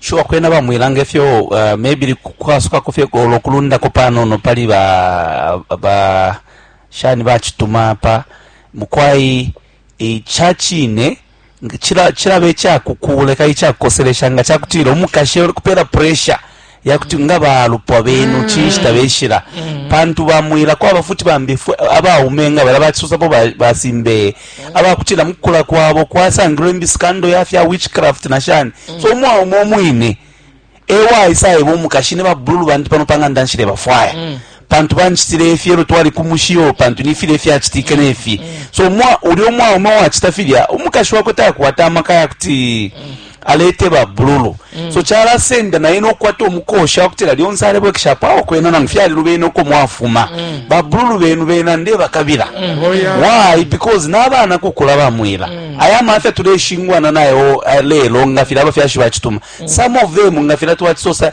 Sure kwena bamwilanga ifyo uh, maybe kwasukako fye golo kulundako panono pali ba, ba shani bacituma apa mukwai icacine cilaba icakukuuleka icakukoselesha nga cakutila umukashe uli kupela pressure ya kuti nga balupwa benu mm. cinshi tabeshila mm. pantu bamwila kwaba futi bambi abaume nga bala bacisosapo basimbeye mm. abakutila mukukula kwabo kwasangilwe imbisikando yafya witchcraft na shani so umwaume omwine ewaisa eba umukashi ne babululu bandi pano panganda nshile bafwaya pantu bancitile ifi elo twali ku mushi yo pantu ni filya ifyacitike ne fi mm. so ulya umwaume wacita filya umukashi wakwe takwata amaka ya kuti mm. alete babululu mm. so calasenda naye nokukwata omukosha wakutila lyonse alebwekeshapo awo kwena nangu fyalilu bena uko mwafuma mm. babululu benu bena ndebakabila mm. oh, yeah. why because nabana kukula bamwila mm. aya mafya tuleshingwana nayo eh, lelo nga fila abafyashi bacituma mm. some of them nga fila twacisosa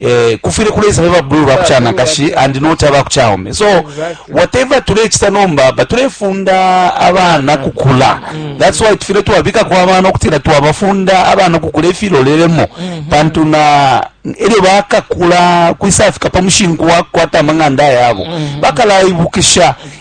eh, kufwile kuleisa ba blue ba kuchana kashi and not aba kuchaume so exactly. whatever tulechita nomba but tulefunda abana kukula mm. that's why tufile twabika kwa abana okutira twabafunda abana kukula ifilolelemo mm -hmm. pantu na elyo bakakula kwisafika pa mushinku wa kukwata amang'anda yabo mm -hmm. bakalaibukisha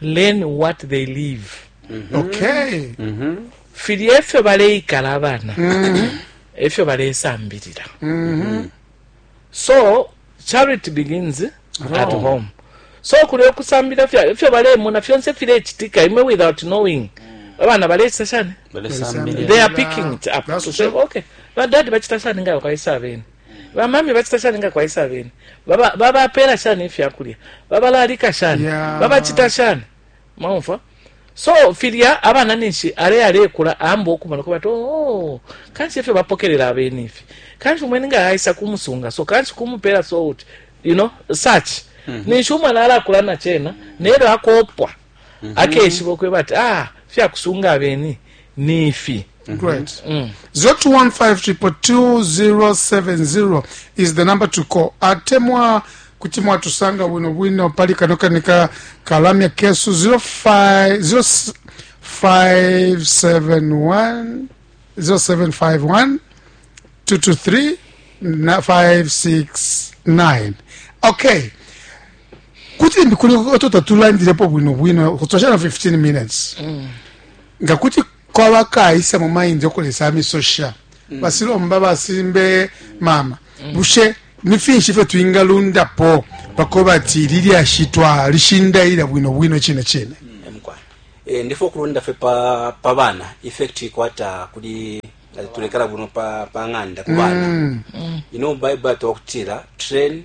learn what they live mm-hmm. okay mm-hmm. fili efyo baleikala abana mm-hmm. efyo balesambilila so charity begins at home so kuli okusambira fyo balemona fyonse firekitika imwe without knowing abana balesa shani they are picking it up to say okay badadi bachita shani ngayo kaisa abene bamami bacita shani nga kwaisa abene babapeela ba, shani ifya kulya babalalika shani yeah. babacita shani maumfwa so filya abana ninshi ale alekula amba okumona ko bati oh, kanshi efyo bapokelela abene ifi kanshi umweni nga aisa kumusunga so kanshi kumupeela so uti you know such mm -hmm. ninshi umwana alakula na chena nelyo akopwa mm -hmm. akeshiba ukweba ati ah fyakusunga abeni ni ifi mm -hmm. right. mm. 0215222070 is the number to call atemwa kuti mwatusanga bwino bwino pali kano kani ka kalamya kesu 0571 0751 223 569 okay kuti limbi kuli oto tatulandilepo bwino bwino kutoshana 15 minutes mm. nga kuti kwaba kaisa mu mind okulesa misosha mm. basilomba basimbe mama mm. bushe ni finshi ifyo twingalundapo pako bati lilyashi twalishindaila bwino bwino chine chine mm. e, ndifo kulunda fe pa, pa bana effect ikwata kuli tulekala buno pa, pa ng'anda ku bana mm. mm. you know bible atokutila train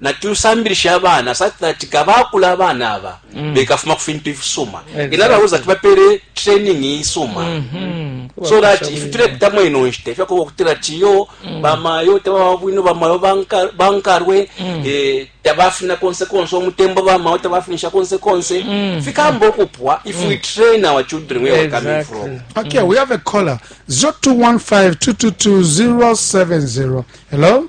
Natusambilishe abana satellite nga bakula abana aba mm. bekafuma ku fintu ifisuma exactly. in other words ati bapere training isuma mm -hmm. so that ifi tulepitamo ino nshita ifyakoba okutira tiyo mm. bamayo tababa bwino bamayo bankarwe mm. eh, tabafina konse konse omutembo bamayo tabafinisha konse konse mm. fikamba okupwa if mm. we train our children where exactly. we're coming from okay mm. we have a caller 0215 222 070 hello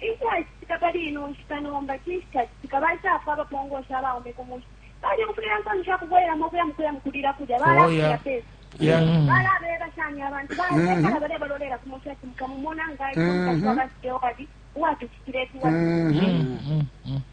Icacitika pali ino nshita nomba, cinshi cacitika? Baisafwa abapongosha abaume ku mushi. Balyumfwile insoni sha kubwelelamo ukuya mu kuya mu kulila kulya. Balakulila pe samba. Balabeba shani abantu? Balekala balebalolela ku mushi ati, Mukamumona nga aisa umukashi wa ba Stewart uwatucitile ifi, uwatucitile ifi.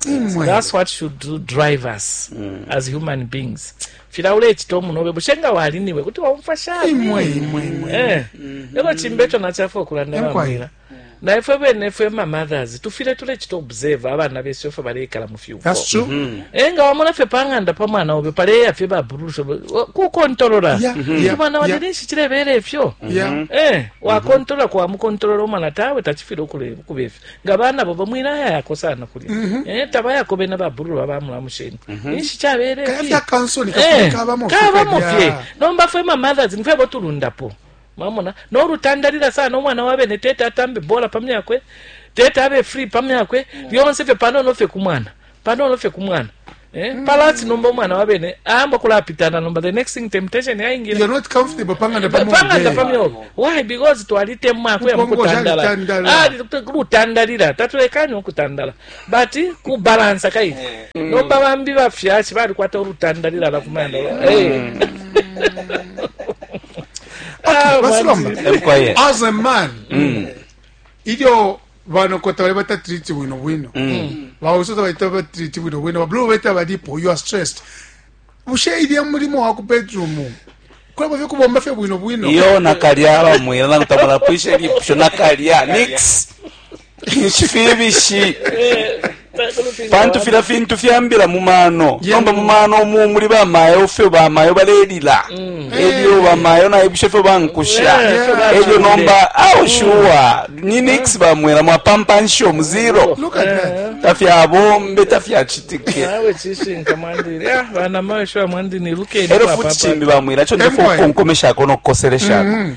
That's what should do drive us mm. as human beings. Fila ule chito munobe bushenga wali niwe kuti waumfa shani. Imwe imwe imwe. Eh. Mm -hmm. Yoko chimbecho na chafu okulanda wa mwila. Na ifwe bene ifwe ma mothers tufile tule chito observe abana besu ifwe bale ikala mu fyuko. That's true. Mm -hmm. Enga wamona fe panganda pa mwana obe pale ya fe ba burusho ku kontrola. Yeah. Mm -hmm. Mwana yeah. wale nishi chile bele ifyo. Yeah. Eh, wa kontrola kwa mu kontrola mwana tawe tachifilo kule kubefi. nga bana bobo mwilayayako sana kulya mm -hmm. eh, tabayako bena babululu abamulamusheni mm -hmm. inshi chabele eh, kabamo fye nomba fwe ma mothers nifwe botulundapo mamona norutandalira sana omwana wabene tete atambe bola pamyakwe tete abe free pamyakwe mm. lyonse fye panono fye kumwana panono fye ku mwana Eh, mm. palati nomba umwana wa bene ayamba kulapitana nomba the next thing temptation yaingira you're not comfortable panganda pa panganda pa myo why because twalitemwa ku yamu kutandala ah kutandalira tatulekanye okutandala but ku balance kai eh. mm. nomba bambi bafyashi bali kwata olutandalira la kumanda mm. eh ah, as a man mm. ilyo banoko tabalebatatreat bwino bwino mm. bawiso tabalebatatreat bwino bwino babulu beta balipo you are stressed bushe ilya mulimo wa ku bedroom kulaba fye kubomba fye bwino bwino iyo nakalya bamwila nakutamala pwishe lipusho nakalya nix nshifibishiye Pantu filya fintu fyambila mu mano nomba mu mano umu muli bamayo fyo bamayo balelila mm. elyo bamayo naibusha fyo bankusha elyo nomba aushuwa ni nix bamwela mwapampansha omu zero tafyabombe tafyacitike elyo futi cimbi bamwela co ndefo ukonkomeshako nokukoseleshako mm-hmm.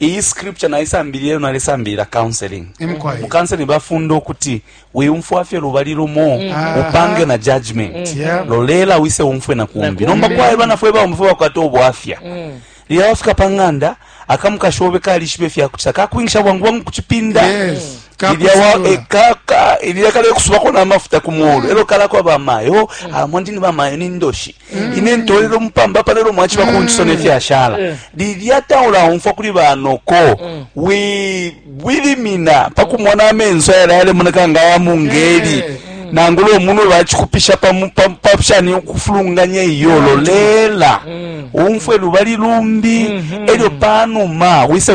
iyi scripture naisambilile lyo nalesambilila counseling Em kwaye. mu counseling bafunda ukuti wiumfwa fye lubali lumo upange na judgment Yeah. lolela wise umfwe na kumbi nomba kwaye bana fwe baume fwe bakwata ubwafya lila wafika pa ng'anda akamukashi obe kalishiba ifyakucita kakwingisha bwangu bwangu kucipinda Yes. Ilya wa- Kakusalula. eh, ka- ka- ilya kale kusubako n'amafuta ku muulu elo kalako bamayo amwandini bamayo ni ndoshi mm. ine ntolera omupamba palero mwakiba ku nkiso nefyashala mm. lilya taula umfwa kuli banoko mm. wilimina pakumona amenso yala yalemoneka nga yamungeli nangula omunwe bakikupisha papshani okufulunganya iyo lolela umfwe lubali lumbi elyo panuma wisa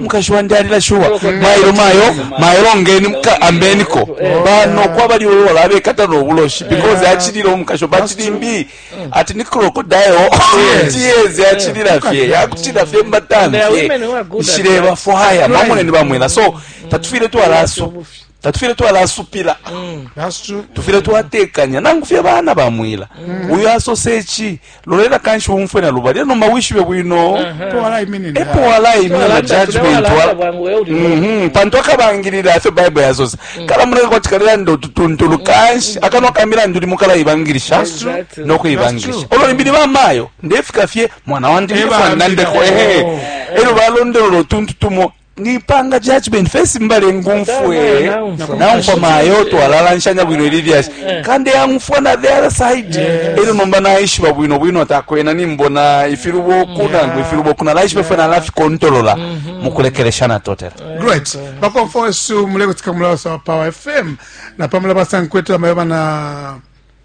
mukashi wandi alila shuwa mailo mayo mayo longeni muka ambeniko bano kwa bali ulo la bekata no buloshi because achilira umukashi bachili mbi ati ni crocodile tears achilira fye yakutira fye mbatani shireba for hire mamone ni bamwena so tatufire tu alaso tatufile twalasupila mm. tufile twatekanya nangu fye bana bamwila mm. uyo asose chi lolela kanshi umfwe na lubali eno mawishibe bwino uh-huh. epo walaimina judgment mhm. pantu akabangilila afyo bible yasosa mm. kala muleka kwati kalelanda ututuntulu kanshi akanwa kamilandu limo kalaibangilisha nokuibangilisha olo limbili bamayo ndefika fye mwana wandi nandeko ehe elyo balondolola utuntu tumo nipanga judgment first mbale ngumfwe naumfwa mayo twalalanshanya bwino ili lyashi eh. kandi yangumfwa na the other side ero nomba naishiba bwino bwino atakwena nimbona ifiluboku nangu ifiluboku nalaishiba fwe nalafikontolola mm-hmm. mukulekelesha natotela great bakomfo wesu mulekutika mulawasa wa power fm napamula basankwetela mayo bana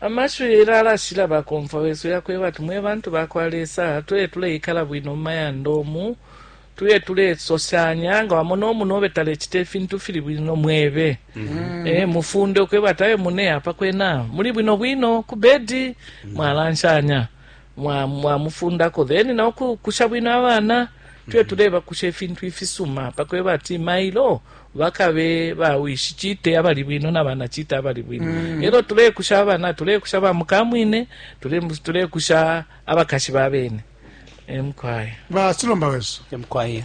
Amashiwi Hillel alashila bakomfwa wesu ya kweba ati, Mwe bantu ba kwa Lesa, tuye tuleikala bwino mu mayanda umu, tuye tulesoshanya, nga wamona umunobe talecita ifintu ifili bwino, mwebe, eh, mufunde ukweba ati, Awe mune, apa kwena muli bwino bwino ku bedi, mwalanshanya. mwamufundako mwa then na ukukusha bwino abana tuye mhm. tulebakusha ifintu ifisuma pakweba ati mailo bakabe bawishi chite abali bwino na bana chite abali bwino mm. elo tulekusha abana tulekusha bamukamwine tulekusha abakashi babene emkwaya basilomba wesu emkwaya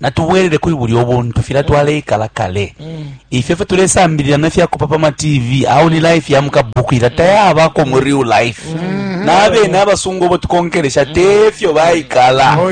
natubwelele kuli bulya obuntu fila mm. twaleikala kale mm. ifyo fyo tulesambilila nefyakupa pa matv awo ni life ya mukabuku ila mm. tayabako mu real life mm-hmm. nabene abasungu obo tukonkelesha tefyo baikala oh,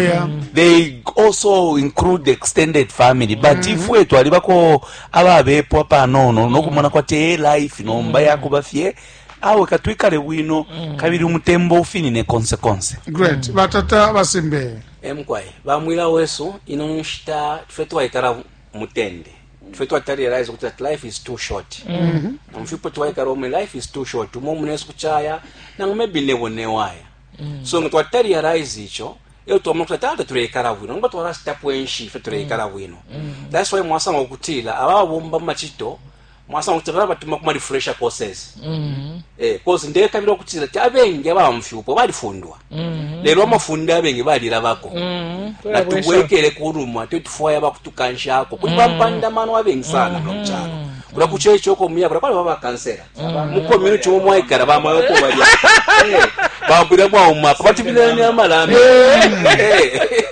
they also include the extended family but mm-hmm. ifwe twalibako ababepwa panono nokumona kwati e life nomba yakuba fye awe katwikale bwino kabili umutembo ufinine konse konse great batata basimbe E mukwai ba mwila wesu ino nshita tufye twaikala mutende tufye twatali realize kuti that life is too short mm-hmm. nomfipo twaikala omwe life is too short umo munesu kuchaya nangu maybe nebo newaya mm. so nga twatali realize icho iyo twamona kuti tata tuleikala bwino nomba twalasitapo enshi fe tuleikala mm. bwino mm. that's why mwasanga okutila ababomba mumachito mwasanga kuti balabatuma kuma refresher courses mm -hmm. eh, cause ndekabila okutila ti abengi abamfyupo balifundwa mm -hmm. lelo amafunde abengi balilabako mm -hmm. natubwekele kulumwa tyo tufwaya bakutukanshako kuti mm -hmm. bampandamano abengi sana mm -hmm. nomucalo kula kuchecho ko muya kula kwali baba kansera mm -hmm. mu community wo mwaikara ba mwayo ko bali eh, babira bwa umapa batibirani amalambe mm -hmm. eh.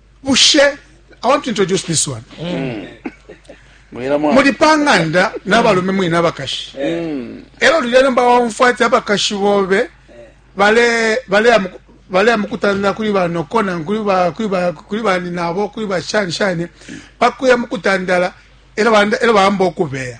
bushe i want to introduce this one mm. muli panganda n'abalume mwine abakashi mm. elo lulya nomba waumfwa ati abakashi bobe baleya mukutanira kuli banokona kuli baninabo kuli bashani shani pakuya mukutandala elo bamba okubeya